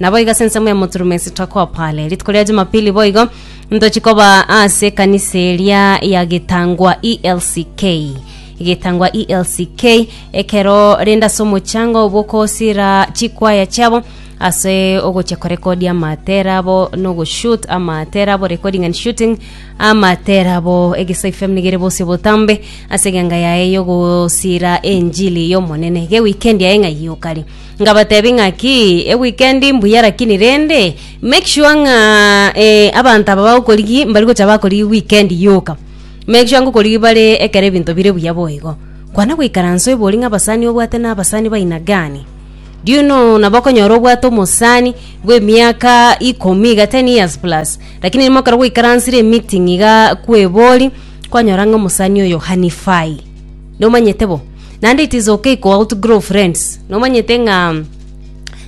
Naboigo ase ensemo ya moturumo esitokwa pale rituko ria jumapili boigo ntochi koba ase ekanisa eria ya getangwa elck getangwa elck ekero rende ase omochango bokosira chikwaya chiabo ase ogochia korekodi amatera abo nogoshut amatera abo recording and shooting amatera abo egesaai fm nigo ere bosio botambe ase eganga yaye yogosira enjili yomonene gewikendi yaye ng'ai yokari Ngabatebia ng'aki, eweekend mbuya lakini rende make sure ng'a eh, abanto aba bagokorigi mbari gocha bakorigi weekend yoka. Make sure ngokorigi bare ekero ebinto bire buya boigo. Kwana goikaransa oiborwe ng'a abasani obwate na abasani baina gani? Do you know nabo okonyora obwate omosani bwa emiaka ikomi iga ten years plus lakini rimo ekero gwaikaransire emeeting iga kwebori kwanyora ng'a omosani oyo hanifai. nomanyete bo naende it is okay ko outgrow friends nomanyete ng'a mm,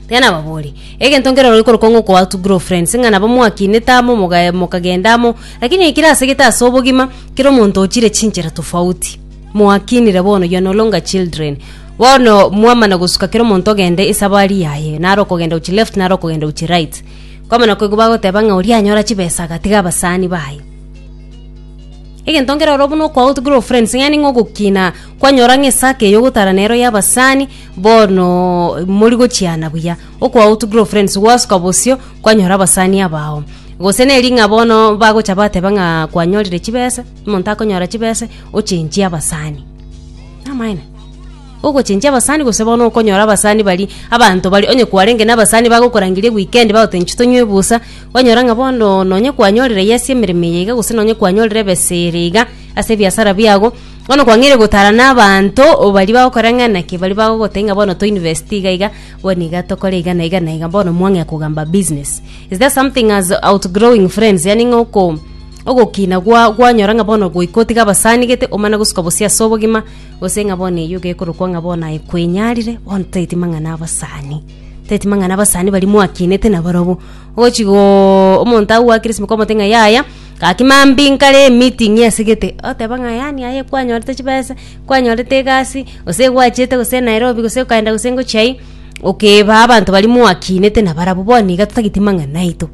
tiga nababori egento nkero rori korokwa ng'a oko outgrow friends ng'a nabo mwakinete amo moga- mokagenda amo lakini ekero asegete ase obogima kera omonto ochire chinchera tofauti mwakinire bono you are no longer children bono mwamana gosuka kera omonto ogende esabari yaye nare okogenda gochia left nare okogenda gochia right kwamana koigwa bagoteba ng'a oria anyora chibesa agatiga abasani baye. Egento nkere oro buna okwa out grow friends ng'ani ng'a ogokina kwanyora ng'a esake eye ogotara nero y'abasani bono mori gochiana buya okwa out grow friends gwasoka bosio kwanyora abasani abao gose neri ng'a bono bagocha bateba ng'a kwanyorire chibesa omonto akonyora chibesa ochenchie abasani namaene. Ogochenchia abasani gose bono okonyora abasani baria abanto baria onye kwarenge nabasani bagokorangeria weekend bagotenchi tonywe ebusa kwanyora ng'a bono nonye kwanyorire yes emeremo eye iga gose nonye kwanyorire ebesa ere iga ase ebiasara biago bono kwang'eire gotara na abanto o baria bagokora ng'a naki baria bagogotebia ng'a bono to invest iga iga bono iga tokore iga na iga na iga bono mwang'ea kogamba business is there something as outgrowing friends yaani ng'a oko ogokina gwa gwanyora ng'a bono goika otiga abasani gete omana gosuka bosie ase obogima. Gose ng'a bono eyio gekorokwa ng'a bono aye kwenyarire, bono tageti mang'ana abasani, tageti mang'ana abasani baria mwakinete nabarobwo. Ogochi gooo omonto agwo gwakire esimo kwamote ng'a yaya, gaki mambia nkare emeeting esegete, oteba ng'a yaani aye kwanyorete chibesa, kwanyorete egasi, gose gwachete gose Nairobi gose okaenda gose ngochia aii, okebaa abanto baria mwakinete nabarabwo, bono iga totageti mang'ana aito.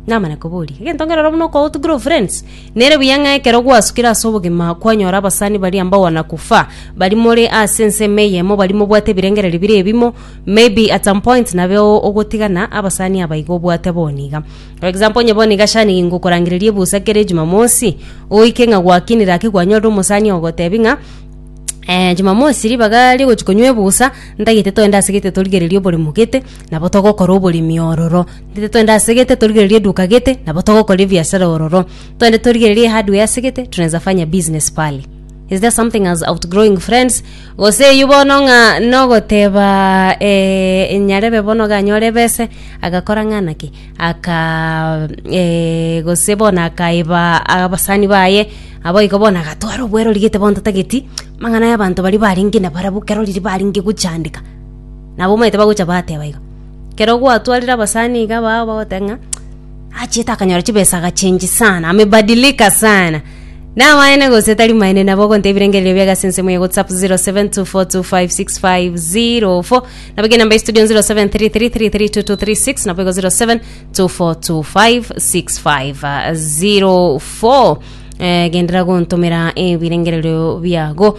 Namana koboria, egento nkerore buna okoutugera ofriends, nere buya ng'a ekero gwasukire ase obogima kwanyora abasani baria mbao na kufa, bari more ase ensemo eyemo, bari mobwate ebirengererio bire ebimo, maybe at some point nabeo ogotigana abasani aba iga obwate bono iga. For example, onye bono iga shani ingokorangereria ebusa kera ejumamosi, oike ng'a gwakinire aki gwanyorire omosani ogogotebi ng'a eh jumamosi ribaga rigochi konywa ebusa, ntagete toende ase gete torigererie oboremo gete, nabo togokora oboremi ororo. Ntete toende ase gete torigererie eduka gete, nabo togokora ebiasara ororo. Toende torigererie hardware ase gete, tonaensa fanya business pale. Is there something as outgrowing friends? Gose eyio bono ng'a nogoteba eh, nyarebe bono ganyore ebese, agakora ng'ana ki? Aka eh, gose bono akaeba abasani baye, naboigo bono agatwara obwerori gete bono totageti amang'ana ya abanto baria barenge nabarabwo kero riria barenge gochandeka. Nabo bamaete bagocha bateba iga. Ekero gwatwarire abasani iga bao bagoteba ng'a achiete akanyora chibesa agachengi sana amebadilika sana namaene gose tari maene nabo ogontebia ebirengererio biaye ase ensemo ya whatsapp 0724256504 nabo eke enamba ya studio 0733332236 nabo igo 0724256504 eh, gendera gontomera ebirengererio biago